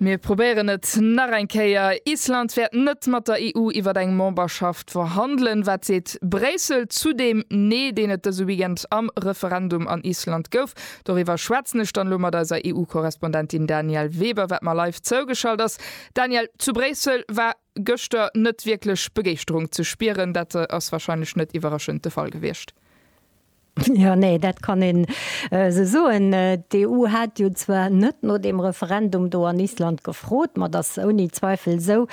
Mir probéieren et nach eng Kéier, Island wäert net mat der EU iwwer eng Memberschaft verhandelen. Wat seet Bréissel zu deem Nee, deen et dëse Weekend am Referendum an Island gouf? Doriwwer schwätzen ech dann elo mat eiser EU-Korrespondentin Danièle Weber, wat mer live zougeschalt ass. Danièle, zu Bréissel war gëschter net wierklech Begeeschterung ze spieren. Dat ass warscheinlech net iwwerraschend de Fall gewiescht. Jo, nee, dat kann een esou soen. D'EU hat jo zwar net no deem Referendum do an Island gefrot, ma et ass ouni Zweifel esou,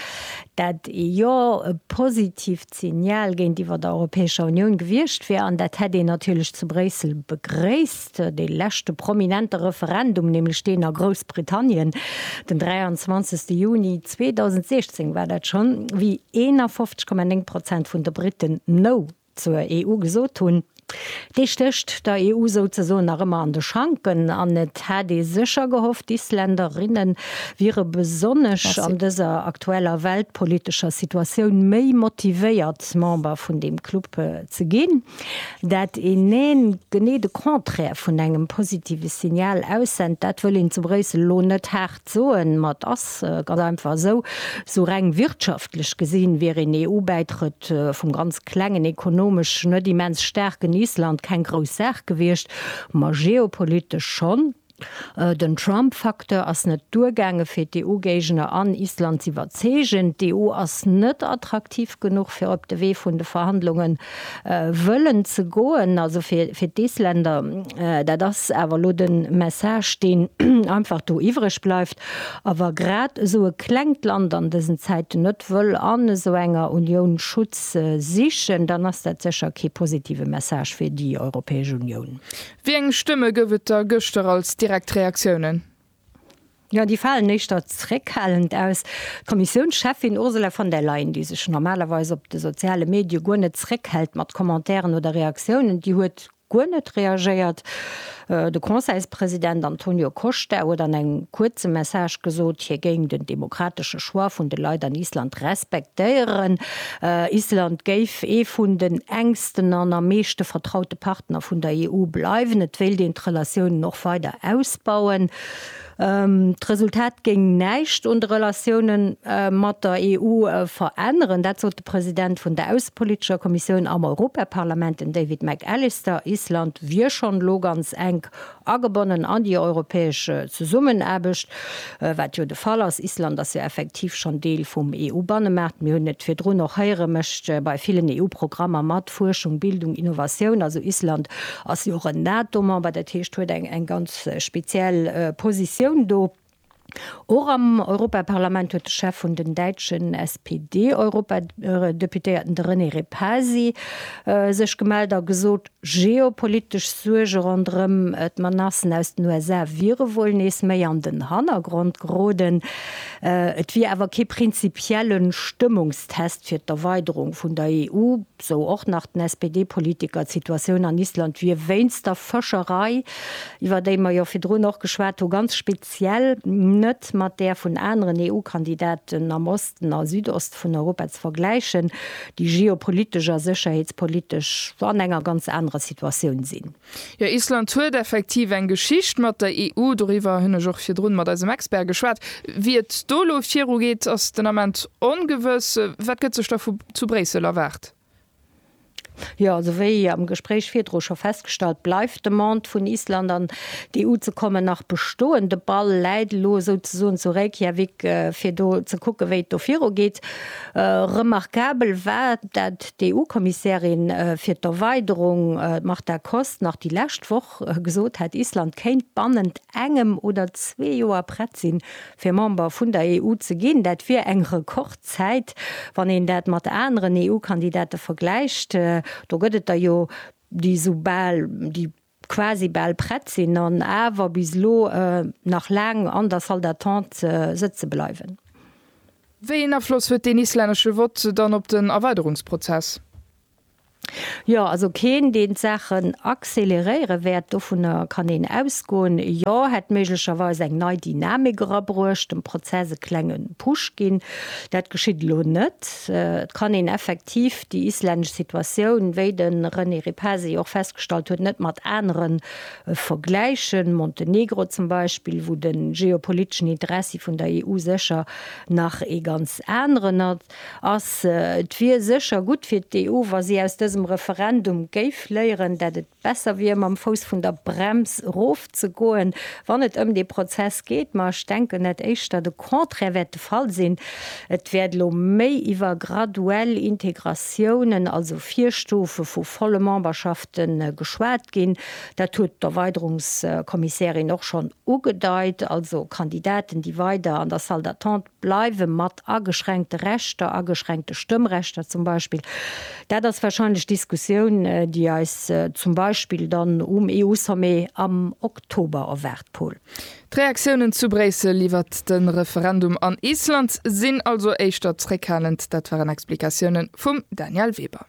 dat ee Jo e positiivt Signal géintiwwer der Europäescher Unioun gewiescht wier. An dat hätt een natierlech zu Bréissel begréisst. Dee leschte prominente Referendum, nämlech deen a Groussbritannien den 23 Juni 2016 war dat schonn, wéi 51,9 Prozent vun de Briten No zur EU gesot hunn, dee stécht der EU souzesoen nach ëmmer an de Schanken an et hätt ee sécher gehofft, d'Isländerinne wiere besonnesch an dëser aktueller weltpolitescher Situatioun méi motivéiert, Member vun deem Club ze ginn. Dat een Neen genee de Contraire vun engem positive Signal aussennt, dat wëll een zu Bréissel elo net haart. Soen, ma et ass ganz einfach esou, Esou reng wirtschaftlech gesinn, wier een EU-Bäitrëtt vum ganz klengen, ekonomesch net immens staarken Island keng grouss Saach gewiescht, ma geopolitesch schonn. Den Trump-Facteur ass net duergaange fir d'EU-Géigner an Island z'iwwerzeegen. D'EU ass net attraktiv genuch fir op de Wee vun de Verhandlungen Wëllen ze goen, also fir d'Isländer. Dat ass awer elo de Message, deen einfach do iwwreg bleift. A wa grad esou e klengt Land an dësen Zäiten net wëll an esou enger Unioun Schutz sichen, dann ass dat sécher kee positive Message fir déi Europäesch Unioun. Wéi eng Stëmme gouf et da gëschter als direkt Reaktiounen? Jo, déi falen éischter zeréckhalend aus. D'Kommissiounscheffin Ursula von der Leyen, déi sech normalerweis op de soziale Medie guer net zeréckhält mat Commentairen oder Reaktiounen, déi huet guer net reagéiert. De Conseilspresident Antonio Costa huet an engem kuerze Message gesot, hie géing den demokratesche Choix vun de Leit an Island respektéieren. Island géif ee vun den enk. wichtegsten an am meeschte vertraute Partner vun der EU bleiwen. Et wéilt een d'Relatiounen och weider ausbauen. D'Resultat géing näischt un de Relatioune mat der EU veränneren. Dat sot de President vun der aussepolitescher Kommissioun am Europaparlament, den David McAllister. Island wier schonn elo ganz enk Agebonnen an déi europäesch Zesummenaarbecht, wat jo de Fall ass. Island ass jo effektiv schonn Deel vum EU-Bannemaart. Mir hunn et virdrun och héieren, mécht bei villen EU-Programmer mat, Fuerschung, Bildung, Innovatioun. Also Island ass jo och en NATO-Member, dat heescht huet eng ganz speziell Positioun do. Och am Europaparlament huet de Chef vun den däitschen SPD-Europadeputéierten, de René Repasi, sech gemellt a gesot, geopolitesch Suerge ronderëm d'Menacen aus den USA wiere wuel nees méi an den Hannergrond geroden. Et wier awer kee prinzipielle Stëmmungstest fir d'Erweiderung vun der EU. Sou och nach den SPD-Politiker. D'Situatioun an Island wier wéinst der Fëscherei, iwwer déi mer jo virdrun och geschwat hu, ganz speziell, net mat där vun aneren EU-Kandidaten am Osten a Südost vun Europa ze vergläichen, déi geopolitesch a sécherheetspolitesch an enger ganz anerer Situatioun sinn. Jo, Island huet effektiv eng Geschicht mat der EU. Doriwwer hunn ech och virdrun mat eisem Expert geschwat. Wéi et do elo viru geet, ass den Ament ongewëss. Wat gëtt sech da vu zu Bréissel erwaart? Jo, esou wéi am Gespréich virdru scho festgestallt, bleift d'Demande vun Island an d'EU ze kommen nach bestoen. De Ball läit elo souzesoen zu Reykjavik fir do ze kucken, wéi et do viru geet. Remarkabel war dat D'EU-Kommissärin fir d'Erweiderung, d'Marta Kos, nach déi lescht Woch gesot hätt, Island kéint bannent engem oder zwee Joer prett sinn, fir Member vun der EU ze ginn. Dat wier eng Rekordzäit, wann een dat mat aneren EU-Kandidate vergläicht. Do gëtt et der jo, déi esou bal déi quasi bal prett sinn an awer bis elo nach laang an der Salle d'attente sëtze bleiwen. Wéi een Afloss huet deen islännesche Vott dann op den Erweiderungsprozess? Jo, also keen, deen d'Saachen acceleréiere wäert, dovunner kann een ausgoen. Jo, hätt méiglecherweis eng nei Dynamik erabruecht, dem Prozess e klenge Push ginn. Dat geschitt elo net. Et kann een effektiv. effektiv déi islännesch Situatioun, wéi de René Repasi jo och festgestallt huet, net mat anere vergläichen, Montenegro zum Beispill, wou de geopoliteschen Interessi vun der EU sécher nach ee ganz aneren ass. Et wier sécher gutt fir d'EU, wa si aus dësem Referendum géif léieren, dat et Besser wier mam Fouss vun der Brems erof ze goen, wann et ëm dee Prozess geet. Ma ech denken, dat éischter de Contraire wäert de Fall sinn. Et wäert elo méi iwwer graduell Integratiounen, also Virstufe vu volle Memberschafte geschwat ginn. Dat huet d'Erweiderungskommissärin och schonn ugedeit, also Kandidaten, déi weider an der Salle d'attente bleiwe mat ageschränkte Rechter, ageschränkte Stëmmrechter zum Beispill, dat ass wahrscheinlech d'Diskussioun, déi eis zum Beispill dann um EU-Sommet am Oktober erwaart, Paul. D'Reaktiounen zu Bréissel iwwert de Referendum an Island sinn also éischter zréckhalend. Dat waren Explikatiounen vum Daniel Weber.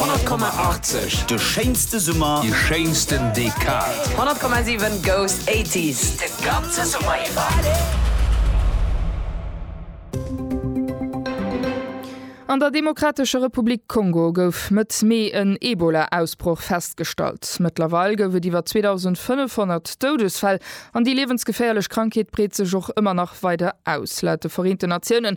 100,80 De schéinste Summer, déi schéinsten Dekad. 100,7 Goes 80s de ganze Summer iwwer. An der Demokratescher Republik Kongo gouf Mëtt Mee en Ebola-Ausbroch festgestallt. Mëttlerweil gouf et iwwer 2.500 Doudesfäll an déi liewensgeféierlech Krankheet breet sech och ëmmer nach weider aus. Laut de Vereenten Natiounen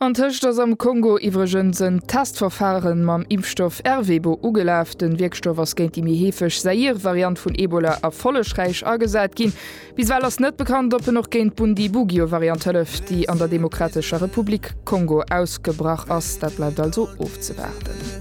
Antëscht ass am Kongo iwwregens en Testverfare mam Impfstoff Ervebo ugelaf. Den Wierkstoff ass géint déi méi heefeg Zaïre-Variant vun Ebola erfollegräich agesat ginn. Bis ewell ass net bekannt, ob en och géint d'Bundibugyo-Variant hëlleft, déi an der Demokratescher Republik Kongo ausgebrach ass. Dat bleift also ofzewaarden.